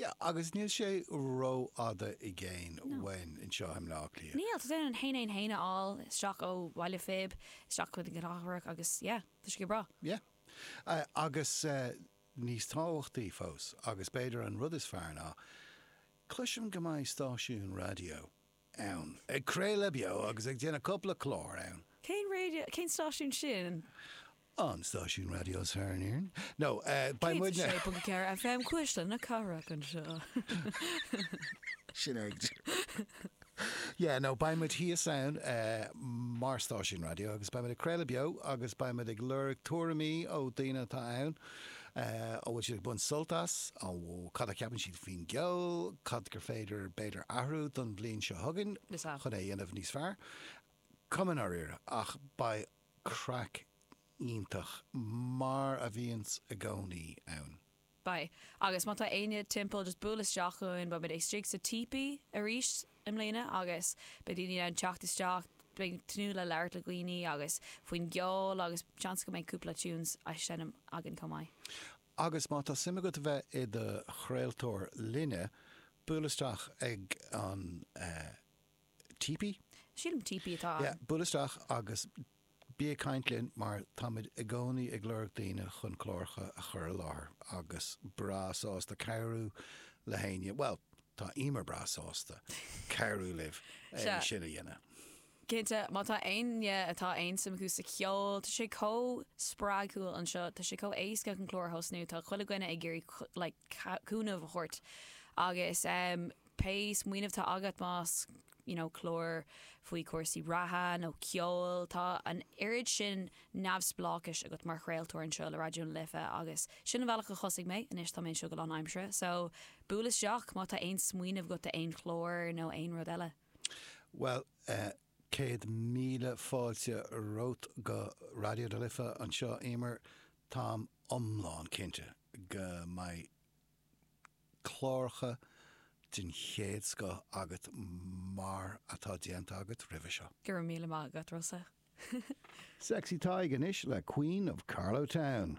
Yeah, agus níl sé rófhada i gcéin No. uainn anseo i mBleá Cliath. Níl, tá tú in ann traein aon traein a fháil isteach ó Bhaile Phib isteach chuig an gcathrach agus yeah, tá sé go breá. Yeah. Agus níos tábhachtaí fós, agus b'fhéidir an rud is fearr ná, cloisim go mbeidh stáisiún raidió ann. Ag craoladh beo agus ag déanamh cupla clár ann. Cén raidio, cén stáisiún sin? An stáisiún raidió is fearr in Éirinn. No, beidh muid. 106.4 FM Cuisle na Cathrach anseo. Sin é. Yeah, no, beidh muid thíos ann mar stáisiún raidió agus beidh muid ag craoladh beo agus beidh muid ag lorg tuairimí ó daoine atá ann. An bhfuil siad ag baint sult as? Nó cad a cheapann siad faoin gceol? Cad gur féidir b'fhéidir athrú don bhliain seo chugainn chun é a dhéanamh níos fearr? Cuma i ndáiríre, ach beidh craic iontach mar a bhíonns i gcónaí ann. Beidh. Agus má tá éinne timpeall just buail isteach chugainn, beimid istigh sa típí aríst. i mbliana agus beidh daoine in ann teacht isteach, beidh muid ag tnúth le labhairt le daoine agus faoin gceol agus seans go mbeidh cúpla tunes á seinm againn chomh maith. Agus má tá suim agat a bheith i do chraoltóir linne, buail isteach ag an Teepee? Sílim Teepee atá ann. Yeah, buail isteach agus. Bí ag caint linn mar táimid i gcónaí ag lorg daoine chun cláracha a chur i láthair agus breá sásta cabhrú le héinne, bhuel, tá Eimear breá sásta cabhrú libh é. Sea. sin a dhéanamh. Cinnte, má tá éinne atá aon suim acu sa cheol, tá sé chomh spreagúil anseo, tá sé chomh éasca chun clár a thosnú, tá chuile dhuine ag iarraidh like ca- cúnamh a thabhairt agus em, pé smaoineamh tá agat más you know clár faoi chúrsaí reatha nó ceoil, tá an oiread sin neamhspleáchais agat mar chraoltóir anseo le Raidió na Life agus sin an bealach a thosaigh mé, anois tá mé anseo go lánaimseartha so buail isteach má tá aon smaoineamh agat do aon chlár nó aon rud eile. Bhuel eh céad míle fáilte romhat go Raidió na Life anseo Éimear, táim iomlán cinnte go mbeidh, cláracha den chéad scoth agat mar atá déanta agat roimhe seo. Go raibh míle maith agat Rossa. Sexy Tadhg anois le Queen of Carlowtown.